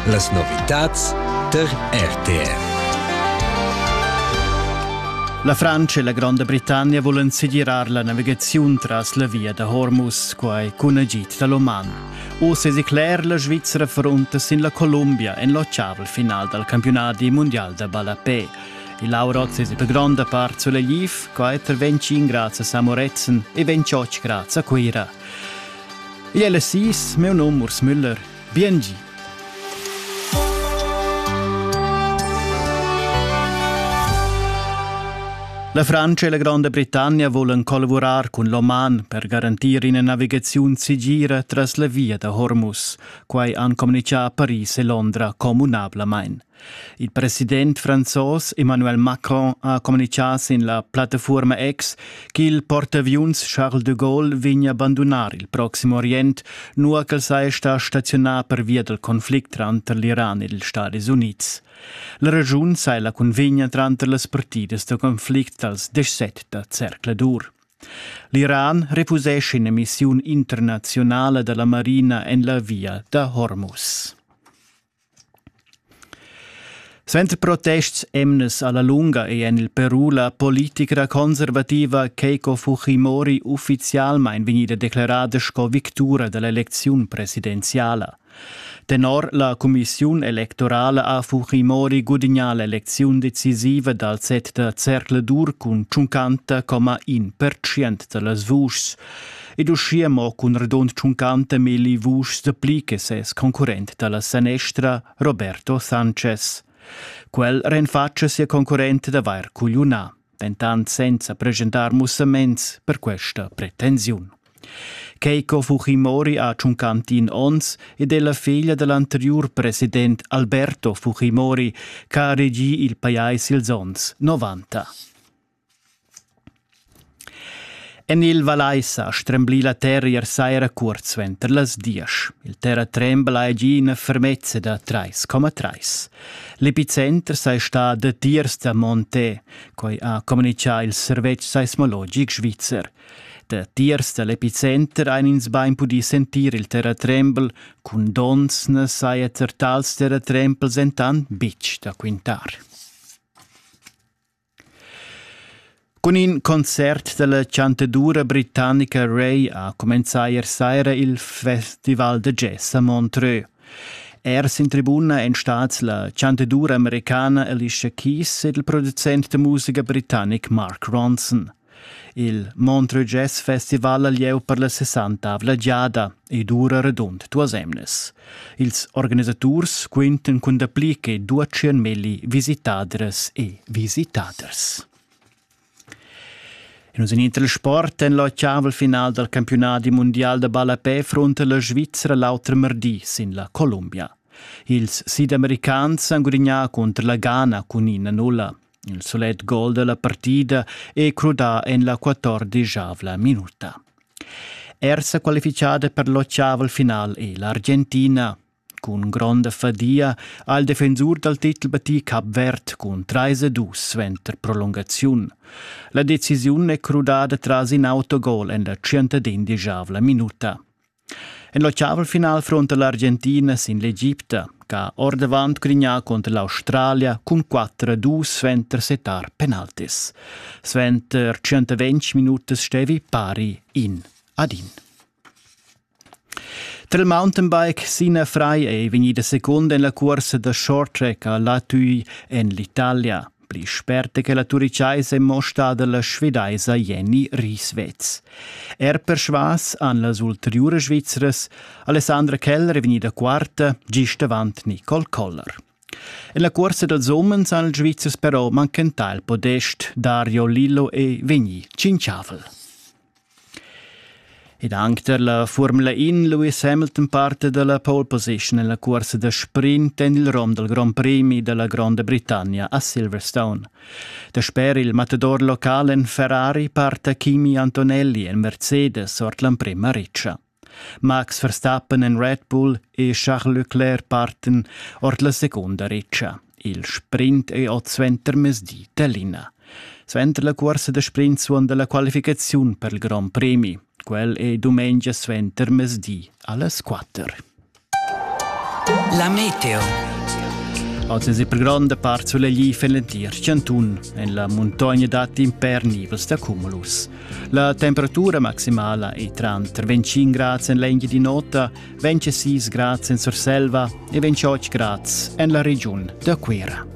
Las novitads tar RTR. La Francia e la Gronda Britannia volan segirar la navigaziun tras la via da Hormuz, quai cun agid da l'Oman. Oz è cler la Svizzera frunta sin la Columbia en l'otgavel final dal campionadi mondial da ballapè. Il Aurot es per gronda part sulegliv, quai intervenci grazie a Samoretzen e 28 grazie a Cuira. Igl è las sis, meu num Urs Müller. Biengi. La Francia e la Granda Britannia volan collavurar cun l'Oman per garantir ina navigaziun segira tras la via da Hormuz. Quai han communichà a Paris e Londra communablamain. Il president franzos Emmanuel Macron ha communitgà sin la plattafuorma X ch'il portaaviuns Charles de Gaulle vegna abandonar il Proxim Orient, nua ch'el saja stà staziunà pervia dal conflict tranter l'Iran ed ils Stadis Unids. La regiun sai la cunvegna tranter las partidas da conflict dals 17 da zercladur. L'Iran refusesce in'emissiun internazionala dalla marina en la via da Hormuz. Suenter protests emnas alla lunga ei en il Peru la politica conservativa Keiko Fujimori ufficialmein vegnida declarada sco victura dall'elecziun presidenziala. Tenor la cumissiun electorala ha Fujimori gudignà l'elecziun decisiva dal set da zercladur cun 50,1% da las vuschs. ed uschia mo cun redond tschuncante melli vuschs de pli che ses concurrent dalla sanestra Roberto Sanchez. Quel renfatscha sia concurrent d'avair cugliunà, dentant senza presentar mussaments per questa pretensiun. Keiko Fujimori ha tschuncantin ons ed è la figlia dell'anteriur president Alberto Fujimori, che ha regì il pajais ils ons 90. En il Vallais ha stremblì la terra ier saira curt suenter las diesch. Il terratrembla è gì ina fermezza da trais coma trais. L'epicenter sei stà datiers da Monté, quai ha communitgà il servetsch seismologic svizzer. Datiers da l'epicenter ein ins bein pudì sentir il terratrembel, cun donns na saja er tals terratrempels entant bitg da quintar. Cun in concert dalla chantadura britannica Ray ha cumenzà ier saira il festival da jazz a Montreux. Ers in tribuna èn stads la chantadura americana Alicia Keys ed il producent da musica britannic Mark Ronson. Il Montreux Jazz Festival ha lieu per la sessantavla giada ed ura radund duas emnas. Ils organisaturs quintan cun dapli che duatschien milli visitadras e visitaders. In Internet Sport en la Chaval final dal campionadi mundial da ballapè fronta la Svizzera l'auter mardi sin la Columbia. Ils sidamericans han gudignà cunter la Ghana cun ina nulla. Il sulet gol dalla partida è crudà en la quattordegiavla minuta. Er sa qualifichada per l'ottaval final è l'Argentina. Cun gronda fadia ha il defensur dal titel battì Cap Verd cun 3-2 suenter prolungaziun. La decisiun è crudada tras in autogol en la 115 minuta. En l'oceanfinal frunta l'Argentina sin l'Egipta, ch'ha ordavant grignà cunter l'Australia cun 4-2 suenter settar penaltis. Suenter 120 minutas stevi pari in ad in. Tra il mountainbike Sina Fry è vegnida secunda en la cursa da short track a Latui en l'Italia. pli sperte che la turichaisa è mo stada la svedaisa Jenny Rieswetz. Er persvas han las ulteriuras Svizras Alessandra Keller e Venida Quarta gist avant Nicole Koller. En la cuorsa dals umens han ils Svizzers però manchentà il podest Dario Lillo e Vigni Cinciavel. Ed anc tar la Formula In Lewis Hamilton parta da la pole position en la cursa da sprint en il rom dal Grand Prix da la Gronda Britannia a Silverstone. Dasper il matador local en Ferrari parta Kimi Antonelli en Mercedes ord l'emprima ritscha. Max Verstappen en Red Bull e Charles Leclerc parten ord la secunda ritscha. Il sprint è oz suentermezdi Tallinn. Suenter la cuorsa da sprint suonda la qualificaziun per il Grand Premi. Quel è dumengia suentermezdi a las 4. La meteo. Oz è per gronda part solegliv en l'entir chantun. En la muntogna datti imper nivels da cumulus. La temperatura maximala è tranter 25 grads en l'engia di nota, 26 grads en Surselva e 28 grads en la regiun da Cuira.